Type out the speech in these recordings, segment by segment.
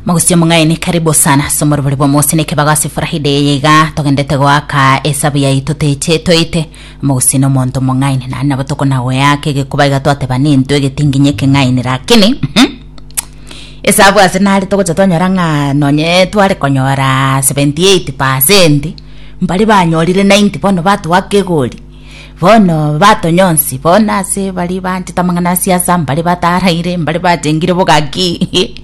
mogosio mong'aini karibu sana somo ribori bwa mosi ne kibago ase furahide eye iga togendete goaka esabu yaito teche toite mogosio na omonto mong'aini nani nabo tokonagoyaka egekuba iga twateba nintwe egetinginyi ekeng'aini lakini mhm, esabu ase nare togocha twanyora ng'a nonye tware konyora 78 pasenti mbari banyorire 90 bono batoaka egori Bono batonyonsi bono ase baria baanchete amang'ana a siasa mbaria bataaraire mbaria batengire bogaki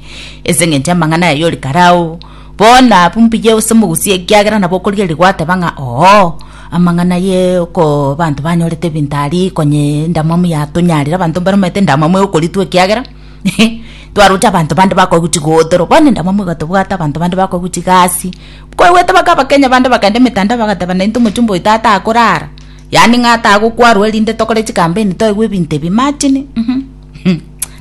ase engencho y'amang'ana aye ore karao bono abwo mbuya gose mogusie ekiagera nabo okorigereria gwateba ng'a oo amang'ana ye oko abanto banyorete ebinto aria konye endamwamu yatonyarire abanto mbare omanyete endamwamu egokoritwa ekiagera twaroche abanto bande bakoigwa chigootoro bono endamwamu egatobwata abanto bande bakoigwa chigasi. Kwaigwete bakabakenya bande bakaenda emetanda bagateba naintwe omochumba oito atakorara, yaani ng'a atagokwarwa erinde tokore chikampeni toigwe ebinto ebi, imagine mhm uhh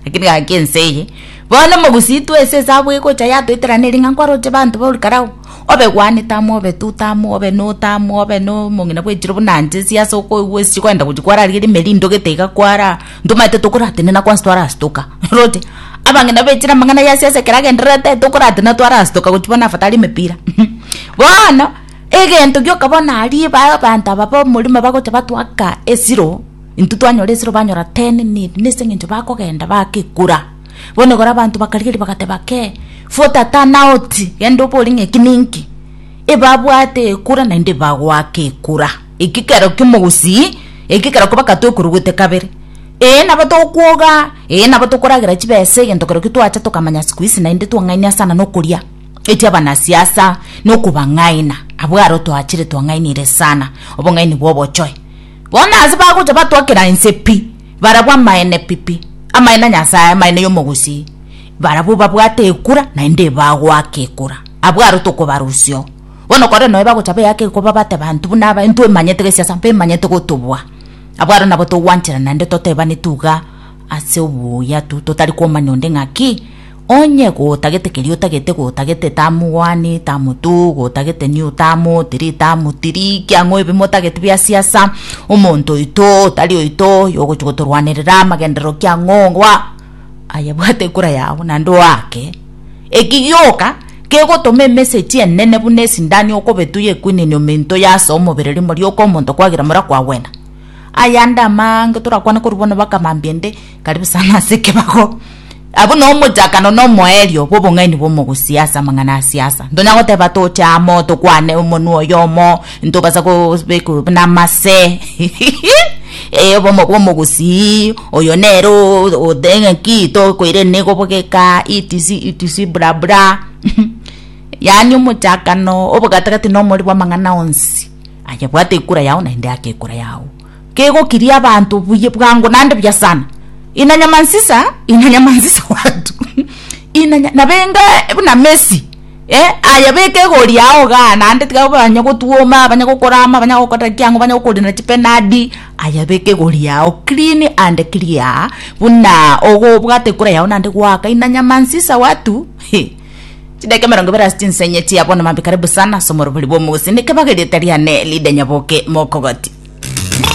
lakini gaki ense eye. Bono mogusi twe ase esabu egocha yatoiterana eri ng'a nkwaroche banto bauri karau, obe gwanete amo obe tute amo obe note amo obe nomong'ina bwechire buna nche ase okoigwa ase chigoenda gochi kwara riria rime rindogete iga kwaraa. Ntomaete tokoratenena kwansi twarasitoka. Roche, abang'ina bechire amang'ana ya siasa ekero agendererete, tokoratenena twarasitoka gochia bono afadhali emepira. Bono, egento gioka bono aria ba- abanto aba b'omorimo bagocha batoaka esiro, intwe twanyora esiro banyora ten nil, nase eng'encho bakogenda bagekura. Bono igoro abanto bakarigeria bagateba kee, futa turn out, genda obore ng'a eki ninki. Ebabwate ekura naende ebagoaka ekura. Ekekero ki'omogusii ekekero kobaka tokorugute kabere. Ee, nabo togokwoga, ee, nabo tokoragera chibesa egento kero kitwacha tokamanya siku isi naende twang'aini ase anana okoria echi abanasiasa na okobang'aina abwo aro twachire twang'ainire sana obong'aini bwa obochoe. Bono ase bagocha batwakera ense pi, barabwo amaene pi pi, amaene a Nyasae, amaene y'omogusii, barabwo babwate ekura naende ebagoaka ekura, abwo aro tokobarusia oo. Bono kore noe bagochaba eyaka eye koba bate banto buna aba, intwe emanyete gesiasa bemanyete gotobua. Abwo aro nabo togwanchera naende totebaneti iga ase obuya tu, totari komanya onde ng'aki, Onye gotagete keria otagete, gotagete tamogwani, tamotu, gotagete niyo tamotiri, tamotiri, ekiang'o ebi motagete bia siasa, omonto oito, otari oito, oyo ogochia gotorwanerera, amagenderero kiang'o, ngwa, aye bwate kura yao naende oake. Eki gioka kegotoma emesegi enene buna esindani okobetu y'ekwinini ominto y'ase omobere rimo rioka omonto kwagera mora kwagwena. Aya ande amaange torakwane korwa bono baka mambia ende karibu sana ase ekebago. Abwo no omochakano no omoerio bw'obong'aini bw'omogusi ase amang'ana a siasa. Ntonya goteba toche amo tokwane omonwa oyomo. ntogasa kobekwa namase ee obomo bw'omogusii oyo nere o- oteng'eki tokoire negobogeka etc etc bla bla yaani omochakano obogatagati na omori bw'amang'ana onsi aye bwate ekura yao naende ake ekura yao kegokiria abanto buya bwango naende buya sana inanyamansisa inanyamansisa watu inanya nabenga buna messi Ee, aye beka egori yao igaa naende tiga banya gotwoma, banya gokorama, banya gokora ki ang'u, banya gokorina chipenadi, aye beka egori yao clean and clear buna ogobwate ekura yao naende gwakaina nyamansisa watu heh. Chidakika emerongo ebere ase chinsa enye chia bono maambia karibu sana ase omorobori bwa omogusii, neke baga erieta riane Lydia Nyaboke mokogati.